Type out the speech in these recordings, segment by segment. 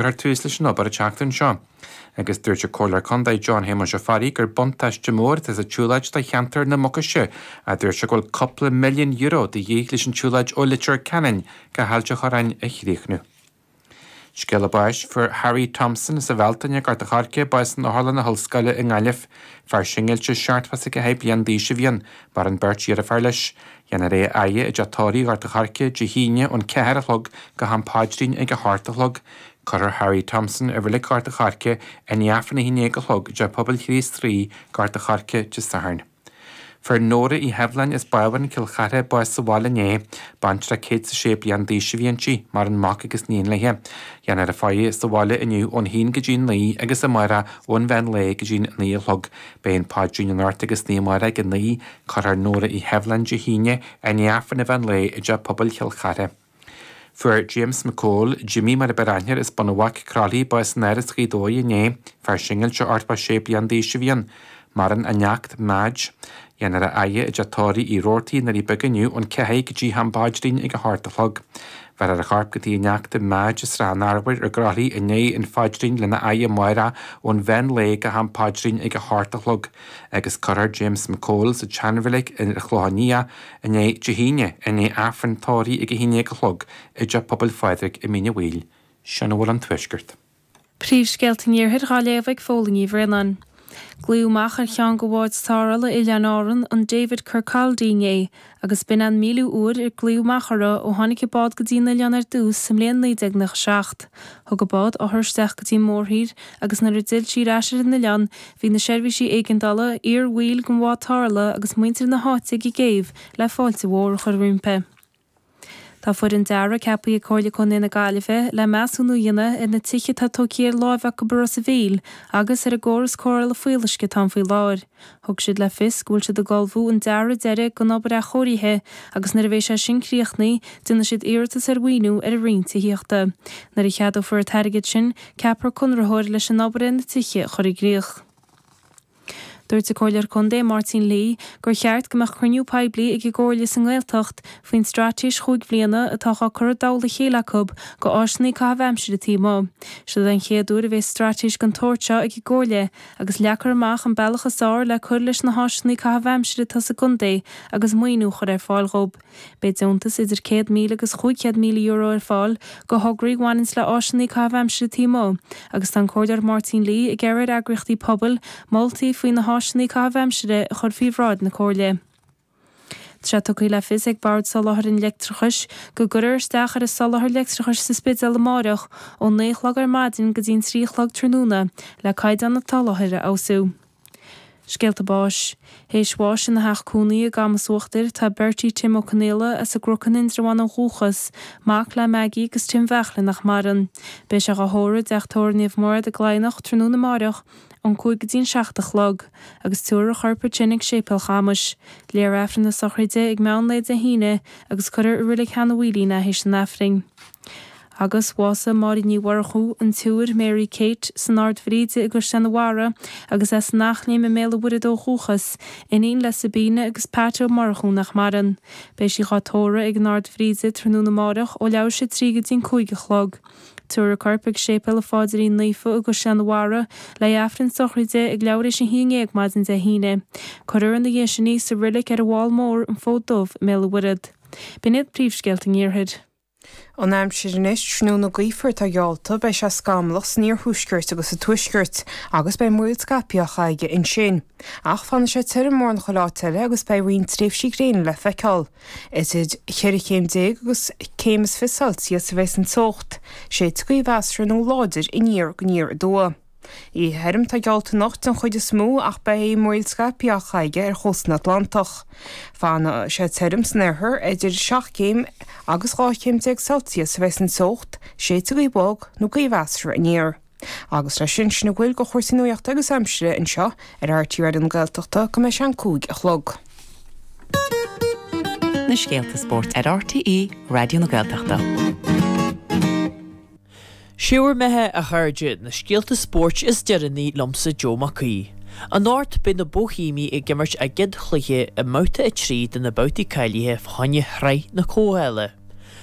Cuireadh tús leis an obair an tseachtain seo agus dúirt an Comhairleoir Contae John Shéamuis Ó Fearraigh gur buntáiste mór atá sa tsiúlóid do cheantar na Mucaise a dúirt sé go bhfuil cúpla milliún euro de dhíth leis an tsiúlóid ó Leitir Ceanainn go hAilt a' Chorráin a chríochnú. Scéala báis Fuair Harry Thompson as an Bhealtaine, Gort a' Choirce bás in Otharlann na hOllscoile i nGaillimh. Fear singilte 71 bliain d'aois a bhí ann, maireann beirt dheartháir leis. Dhéanfar é a fhaire i dteach tórraimh Ghort an Choirce Dé hAoine ón ceathair a chlog go ham páidrín ag a hocht a chlog. Cuirfear Harry Thompson i reilig Ghort an Choirce i ndiaidh Aifreann a haon déag a chlog i dTeach Pobail Chríost Rí Ghort an Choirce Dé Sathairn. Fuair Nóra Uí Sheibhleáin as Bábhún, Cill Chartha bás sa bhaile inné. Baintreach 106 bliain d'aois a bhí inti, maireann mac agus níon léithe. Dhéanfar í a faire sa bhaile inniu ón haon go dtí an naoi agus amárach ón mheán lae go dtí an naoi a chlog. Beidh an páidrín anocht agus san oíche amárach ag a naoi Cuirfear Nóra Uí Sheibhleáin Dé hAoine i ndiaidh Aifreann an mheán lae i dTeach Pobail Chill Chartha. Fuair James McCole, Jimmy mar a b'fhearr aithne air, as Bun an Bhaic, Croithlí, bás in Áras Ghaoth Dobhair inné. Fear singilte, 86 bliana d'aois, a bhí ann. Maireann a neacht, Madge. Dhéanfar é a fhaire i dteach tórraimh Uí Rabhartaigh i nDoirí Beaga inniu ón cheathair go dtí ham paidrín ag a hocht a chlog. Bhéarfar a chorp go tigh a neachta, Madge, i Srath an Arbhair i gCroithlí i ndiaidh an phaidrín lena fhaire amárach ón mheán lae go ham paidrín ag a hocht a chlog. agus cuirfear James McCole sa tseanreilig ar an Chlochán Liath i ndiaidh, Dé hAoine, i ndiaidh Aifreann tórraimh ag a haon déag a chlog i dTeach Pobail Phádraig i Mín Uí Bhaoill. Sin a bhfuil ón Tuaisceart. Príomhscéalta an Iarthair Dhá léamh ag Fódhla Ní Bhraonáin. Glaodh amach ar cheann de bháid tarrthála Oileáin Árann an David Kirkaldy inné agus b'in an míliú uair ar glaodh amach orthu ó tháinig an bád go dtí an oileán ar dtús sa mbliain 1997. Thug an bád othar isteach go dtí an mórthír, agus nuair a d'fhill sí ar ais ar an oileán, bhí na seirbhísí éigeandála, iar-bhaill den bhád tarrthála agus muintir na háite ag an gcéibh le fáilte mhór a chur roimpi. Tá foireann dearaidh ceapaithe ag Comhairle Contae na Gaillimhe le measúnú a dhéanamh ar na tithe atá tógtha ar láimh acu i Ros a' Mhíl agus ar an gcóras cóireála fuíolluisce atá ann faoi láthair. Thug siad le fios go bhfuil siad ag ullmhú an dearadh deiridh don obair athchóirithe agus nuair a bheidh sé sin críochnaí, déanfaidh siad iarratas ar mhaoiniú ar an roinn tithíochta. Nuair a cheadófar an t-airgead sin, ceapfar conraitheoir leis an obair ar na tithe a chur i gcrích. Dúirt an Comhairleoir Contae Máirtín Lee gur cheart go mbeadh cruinniú poiblí ag an gComhairle sa nGaeltacht faoin straitéis chúig bhliana atá á cur i dtoll a chéile acu go áiseanna caithimh aimsire taobh amuigh. Seo an chéad uair a bheas straitéis den tsórt seo ag an gComhairle, agus leagfar amach an bealach is fearr le cur leis na háiseanna caitheamh aimsire atá sa gcontae agus maoiniú a chur ar fáil dhób. Beidh deontas idir €100,000 agus €500,000 ar fáil go thograí a bhaineanns le háiseanna caitheamh aimsire taobh amuigh agus tá an Comhairleoir Máirtín Lee ag iarraidh ar eagraíochtaí pobail moltaí faoi na háiseanna caitheamh aimsire a chur faoi bhráid na Comhairle. Tá tugtha le fios ag Bord Soláthair an Leictreachais go gcuirfear isteach ar an soláthar leictreachais sa Spidéal amárach ón naoi a chlog ar maidin go dtí an trí a chlog tráthnóna le caighdeán an tsoláthair a fheabhsú. Scéalta báis. Théis bháis ina theach cónaí i gCamas Uachtair tá Bertie Tim Ó Conaola as an gCruc in Indreabhán ó dhúchas, mac le Maggie agus Tim Bheachlin nach maireann. Beidh sé dhá thórramh i dTeach Tórraimh Naomh Mairéad i gCladhnach tráthnóna amárach ón cúig go dtí an seacht a chlog, agus tabharfar a chorp as sin ag Séipéal Chamuis. Léifear Aifreann na sochraide ag meán lae Dé hAoine agus cuirfear i Reilig Sheanadh Mhaoilín é théis an Aifrinn. Agus bhásaigh Máirín Ní Mhurchú, an tSiúr Mary Kate, san Ard Bhríde i gCaisleán an Bharraigh agus as an Eachléim i mBéal an Mhuirthead ó dhúchas, iníon le Sabina agus Pat Ó Murchú nach maireann. Beidh sí dhá tórramh ag an Ard Bhríde tráthnóna amárach ó leathuair théis a trí go dtí an cúig a chlog. Tabharfar a corp ag Séipéal an Phaidrín Naofa i gCaisleán an Bharraigh, léifear Aifreann na sochraide ag leathuair théis a haon déag maidin Dé hAoine. Cuirfear ina dhiaidh sin í sa reilig ar an bhFál Mór, an Fód Dubh, i mBéal an Mhuirthead. B'in iad príomhscéalta an Iarthair. An aimsir anois, tráthnóna gaofar atá geallta, beidh sé scamallach san iarthuaisceart agus sa tuaisceart, agus beidh múraíl scaipthe aige ansin. Ach fanfaidh sé tirim mórán chuile áit eile agus beidh roinnt tréimhsí gréine le feiceáil. Idir cheithre chéim déag agus céim is fiche Celsius a bheas an teocht, séidfidh gaoth mheasartha nó láidir aniar go aniar aduaidh. Oíche thirim atá geallta anocht den chuid is mó ach beidh múraíl scaipthe á caitheamh ar chósta an Atlantach. Fanfaidh sé tirim san oirthear, idir seacht gcéim agus dhá chéim déag Celsius a bheas an teocht, séidfidh gaoth bhog nó gaoth mheasartha aniar. Agus le sin, sin a bhfuil go chúrsaí nuachta agus aimsire anseo ar RTÉ Raidió na Gaeltachta go mbeidh sé an cúig a chlog. na scéalta spóirt ar RTÉ Raidió na Gaeltachta. 'Sé bhur mbeatha a chairde, na scéalta spóirt is deireanaí liomsa Joe Mac Aoidh. Anocht beidh na Boihéamaigh ag imirt a gcéad chluiche i mbabhta a trí de na babhtaí cáilithe fá choinne shraith na Comhdhála.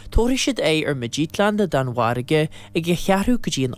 Tabharfaidh siad aghaidh ar Midtjylland na Danmhairge ag a cheathrú go dtí an